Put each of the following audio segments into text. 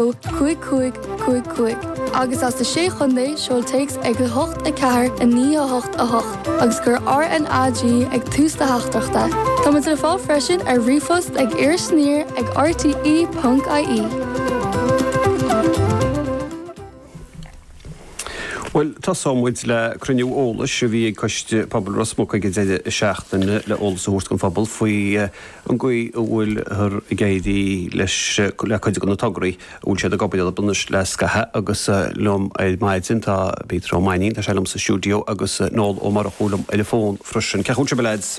ó cúig cúig cúig cúig agus as na Sé Chontae, seol téacs ag 8 4 9 8 8 agus cuir RNAG ag tús do theachtaireachta. Táimid le fáil freisin ar ríomhphost ag irisaniar ag rte. ie. Bhuel, tosóidh muid le cruinniú eolais a bhí ag Coiste Pobail Ros Muc ag an deireadh seachtaine le eolas a thabhairt don phobal faoi an gcaoi a bhfuil ag éirí leis le cuid de na tograí a bhfuil siad ag obair orthu anois le scaitheamh agus liom ar maidin tá Peter Ó Mainín, tá sé liom sa stiúideo agus Noel Ó Murchú liom ar an bhfón freisin. Cén chaoi a bhfuil sibh lads?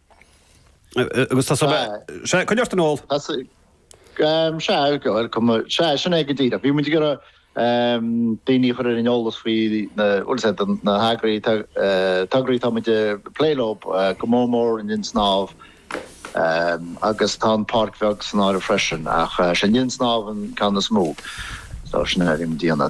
Agus tá sá. sé chuine ort an ól. sé gohfuil cum sé sin é go díreach. Bhí muid ag iarraidh daoine a chur in eolas faoi na heagraí tograí tá muid ag plé leo go mór mór an linn snámha agus tá an páirc bheag san áireamh freisin ach sé an linn snámha an ceann is mó. Tá sin ar an díana.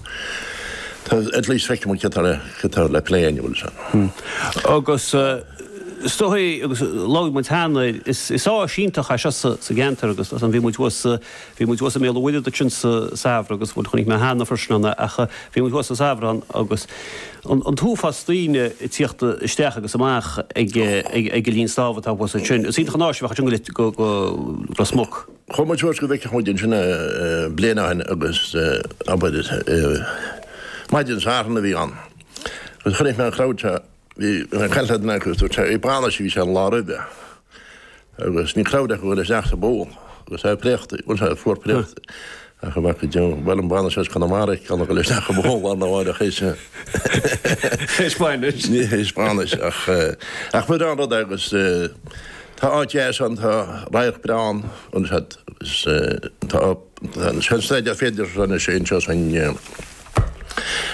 Tá at least feicim an ciotára ciotára le plé inniu fhil sin. Agus stopfaidh agus logfaidh muid theann air. Is is áis iontach é seo sa sa gceantar agus as an bhí muid thuas bhí muid thuas i mBéal an Mhuirthead ansin sa sa samhradh agus bhuel chonaic mé theann na Frosnanna ach bhí muid thuas sa samhradh agus an an t-uafás daoine ag tíocht isteach agus amach ag ag ag an linn snámha atá thuas ansin. Is iontach an áis a bheadh ansin go go go Ros Muc. Chomh maith leis go bhfeicfeadh muid ansin é Bléin Átha'n agus abair maidin Satharn a bhí ann agus chonaic mé an crowd seo, bhí an ceann de na daoine dúirt sé é bainis a bhí sé an lá roimhe agus bhí crowd acu chuile isteach sa bpoll agus é préachta, bhuel sé fuar préachta. Ach a bheadh go deo. Bhuel, an bhfanadh sé as Conamara ag ceannairc leis nach raibh amháin lán amháin ach is. Is bainis. Ní his bainis ach. Ach muid ann rud é agus tá áit dheas ann, tá radharc breá ann, an sead, is tá an sead sna de féidearthachta anseo is an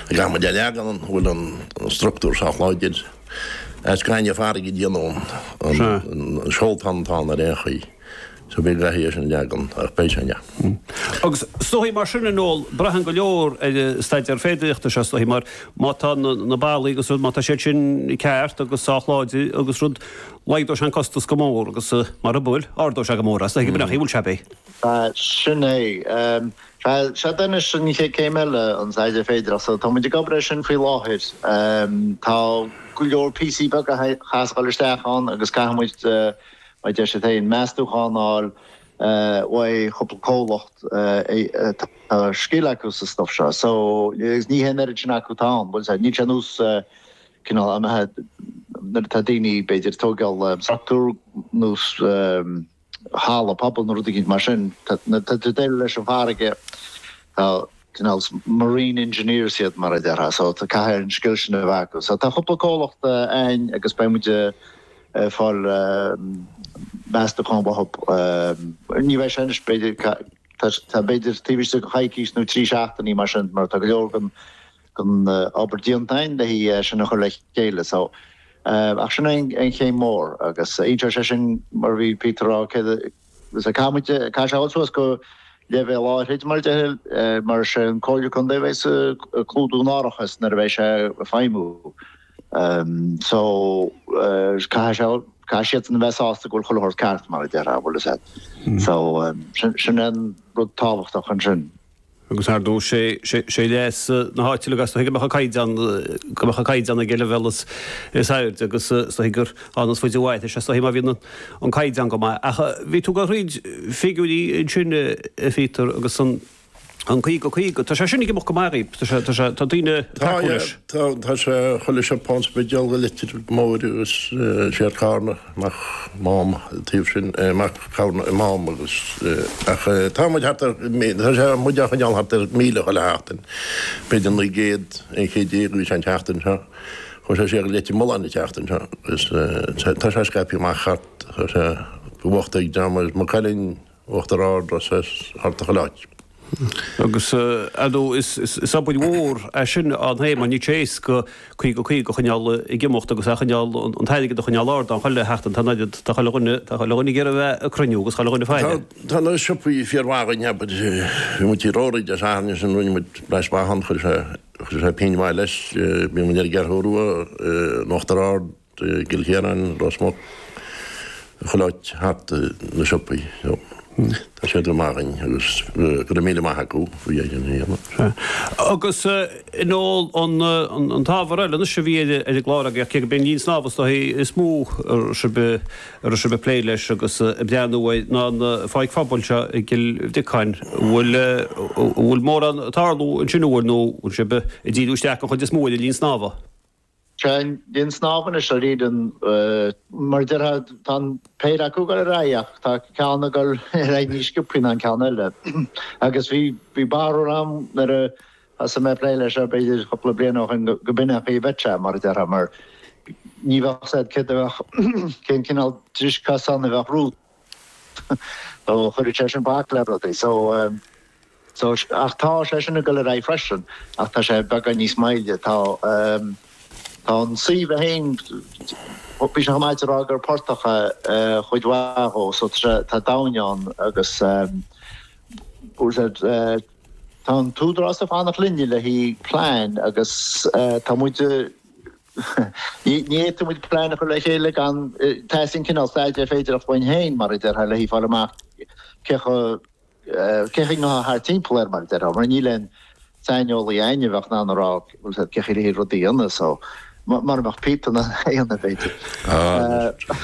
ag am a deich leagan ann bhfuil an structúr sách láidir. As gaineamh farraige a déanadh an seoltán tá ann ar aon chaoi. So bhí leath aois an leagan ach beidh sé inniu. Agus soithí mar sin in ól, braitheann go leor ar an staidéar féidearthachta seo sa tslí mar má tá na ballaí agus rud má tá siad sin ceart agus sách láidir agus rud laghdóidh sé an costas go mór agus mura bhfuil ardóidh sé go mór as. Ag an mbealach í bhfuil sé bhí. Sin é. Sea tá anois an chéad céim eile an staidéar féidearthachta. Tá muid ag obair ar sin faoi láthair. Tá go leor píosaí beaga ag teastáil isteach ann agus caithfidh muid Beidh deis againn meastachán a fháil uaidh cúpla comhlacht atá scil acu sa stuff seo so agus ní hé an oiread sin acu atá ann, bhuel níl sé ar nós cineál imithe nuair atá daoine b'fhéidir tóigeál structúr nó halla pobail nó rud éigin mar sin nuair tá tú déileáil leis an bhfarraige tá cineál marine engineers iad mar a déarfá so tá caithfidh an scil sin a bheith acu so tá cúpla comhlacht a'inn agus beidh muid fáil meastachán uathub. Ní bheidh sé anois b'fhéidir, tá b'fhéidir taobh istigh de choicís nó trí seachtainí mar sin mar tá go leor den obair déanta againn le haghaidh sin a chur le chéile so ach sin é an chéim mhór agus inseoidh sé sin mar a bhí Peter a rá céard, Caithfidh muid caithfidh sé a dhul suas go leibhéal áithrid mar a deirtear mar is é an Comhairle Contae a bheidh dhá chlúdú in árachas nuair a bheidh sé ag feidhmiú. So caithfidh sé caithfidh siadsan a bheith sásta go bhfuil chuile shórt ceart mar a deirtear bhuel is é. So sin sin an rud tábhachtach ansin. agus ar ndóigh sé sé leas na háite é agus an dtuigeann tú go mbeadh an caighdeán go mbeadh an caighdeán ag an leibhéal is is airde agus an dtuigeann tú gur amhlaidh is faide a mhairfeas sé má bhíonn an caighdeán go maith ach bhí tú ag goil thríd figiúirí ansin a Pheter agus an an 50 50 tá sé sin go maith go maith tá sé tá sé tá daine tá tá sé chola se pás be deal go litir mór agus sé carna Amach Mám taobh sin, amach go Mám agus ach tá muid thart ar tá sé muid ag coinneáil thart ar míle chuile sheachtain. B'fhéidir 900 aon chéad déag a bhí sé an tseachtain seo. Chuaigh sé siar Leitir Mealláin an tseachtain seo agus tá sé scaipthe amach thart go bhfaigheadh dream agus Maigh Cuilinn, Uachtar Ard agus thart chuile áit. Agus ar ndóigh is obair mhór é sin an t-am mar níl sé éasca 50 50 a choinneáil ag imeacht agus a choinneáil an t-airgead a choinneáil ard ann. Chuile sheachtain tá an oiread, tá chuile dhuine, tá chuile dhuine ag iarraidh a bheith ag cruinniú agus chuile dhuine faoi. Tá na siopaí fíor mhaith againn abair bhí muid ag rórudh Dé Sathairn ansin rinne muid thar a bheith maith ann chuir sé chuir sé pingin mhaith leis bíonn muid ar an gCeathrú Rua in Uachtar Ard. I gCill Chiaráin, Ros Muc, chuile áit thart na siopaí. Tá siad go maith againn agus go raibh míle maith acu faoina a dhéanamh. Agus in eol an t-ábhar eile anois a bhí ar an gclár againn, cé go mb'é an linn snámha is dóigh is mó a raibh sibh ag plé leis agus ag breathnú air ná an pháirc phobail seo i gCill Bhriocáin. An bhfuil mórán ag tarlú ansin faoi láthair nó an bhfuil sibh ag díriú isteach an chuid is mó ar an linn snámha? Seán, Tá an snámh anois ar íde an. mar a déarfá, tá an péire acu ag dul ar aghaidh ach tá ceann ag dul ar aghaidh níos sciopthaí ná an ceann eile. Agus bhí, bhí barúil a'm nuair a thosaigh mé a' plé leis seo b'fhéidir cúpla bliain ó shin go, go b'in é an chaoi a bheadh sé mar a déarfá mar ní bheadh a fhios a'd, céard a bheadh, cén cineál dris cosáin a bheadh romhat. so cuirfidh sé sin bac le rudaí so so ach tá sé sin ag goil ar aghaidh freisin ach tá sé beagán níos maille tá tá an suíomh a haon bhí siad chomh maith ag rá gur portach a chuid mhaith dhó so tá doimhne ann agus tá an t-údarás ag fanacht linne le haghaidh plean agus tá muid Ní fhéadfadh muid plean a chur le chéile gan, tá's a'd, cineál staidéir ar féidir a chloinn féin, mar a déarfá, le haghaidh fáil amach cé, cén chaoi a ghabhfá thart timpeall air, mar a déarfá, mar níl aon saineolaí againn a bheadh in ann a rá cén chaoi le rudaí ionnas, mar a mbeadh Peter in ann a bheith.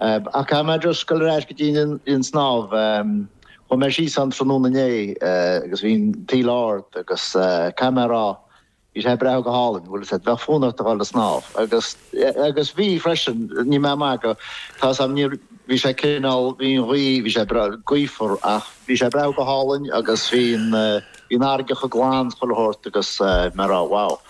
Ach caithfidh mé just goil ar ais go dtí an snámh. Chuaigh mé síos ann tráthnóna inné agus bhí an taoille ard agus caithfidh mé a rá bhí sé ag breathnú go hálainn, agus bheadh fonn ort a dhul ag snámh agus, agus bhí freisin, níl mé ag magadh, tá's a'm níor, bhí sé cineál, bhí an ghaoth, bhí sé ag breathnú gaofar ach bhí sé ag breathnú go hálainn agus bhí an, bhí an fharraige chomh glan chuile shórt agus mé a rá wow.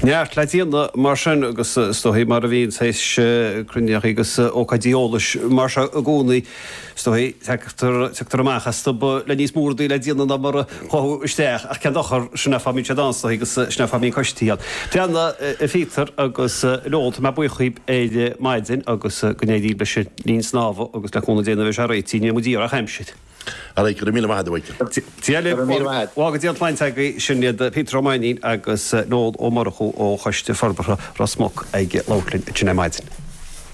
Neart le déanamh mar sin agus is dóigh mar a bhíonn théis cruinnitheachaí agus ócáidí eolais mar seo i gcónaí, is dóigh, tagtar amach astu le níos mó rudaí le déanamh ná mar a chuaigh isteach ach cén dochar, sin é fáth a mbíonn siad ann is dóigh agus sin é fáth a mbíonn coistí ann. Bhuel a Pheter agus Noel, tá mé buíoch dhaoib ar maidin agus go n-éirí libh leis an linn snámha agus le cúnamh Dé nuair a bheidh sé réitithe ní bheidh muid ag iarraidh ach aimsir. All right, go raibh míle maith agat. Dia libh, lá maith, go dté sibh slán, sláinte agaibh, sin iad Peter Ó Mainnín agus Noel Ó Murchú ó Choiste Forbartha Ros Muc ag labhairt linn ansin ar maidin.